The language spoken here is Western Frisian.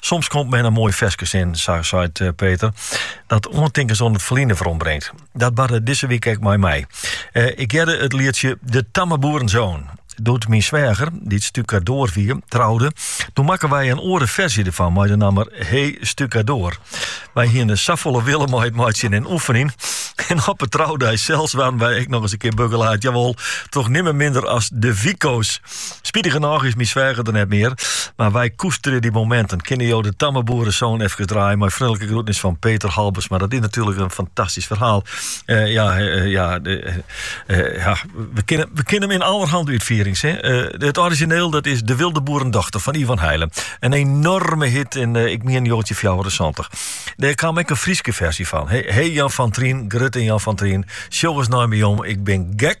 Soms komt men in moai ferske tsjin, sa seit eh, Peter, dat oantinkens oan it ferline werombringt. Dat barde dizze wike ek mei my. Eh, ik hearde it lietsje De Tamme Boerenzoon. Doe't myn sweager, dy't stukadoar wie, troude, doe makken wy in oare ferzje derfan, mei de namme Hey Stukadoar. Wy hienen safolle wille mei it meitsjen en oefenjen. En op 'e troudei sels waarden wy ek nochris in kear begelaat, jawol, troch nimmen minder as de Wiko's. Spitigernôch is myn sweager der net mear, mar wy koesterje dy mominten. Kinne jo De Tamme Boerenzoon efkes draaie mei freonlike groetnis fan Peter Halbersma. Dat is natuerlik in fantastysk ferhaal. Eh, ja, eh, ja, eh, eh, ja, we kenne, we kenne him yn allerhande útfierings, hè. Eh, het orizjineel dat is De Wilde Boerendochter fan Ivan Heylen. In enoarme hit yn, eh, ik mien, 1974. Dêr kaam ek in Fryske ferzje fan. He, he Jan fan Tryn, grutte Jan fan Tryn, sjoch ris nei my om, ik bin gek.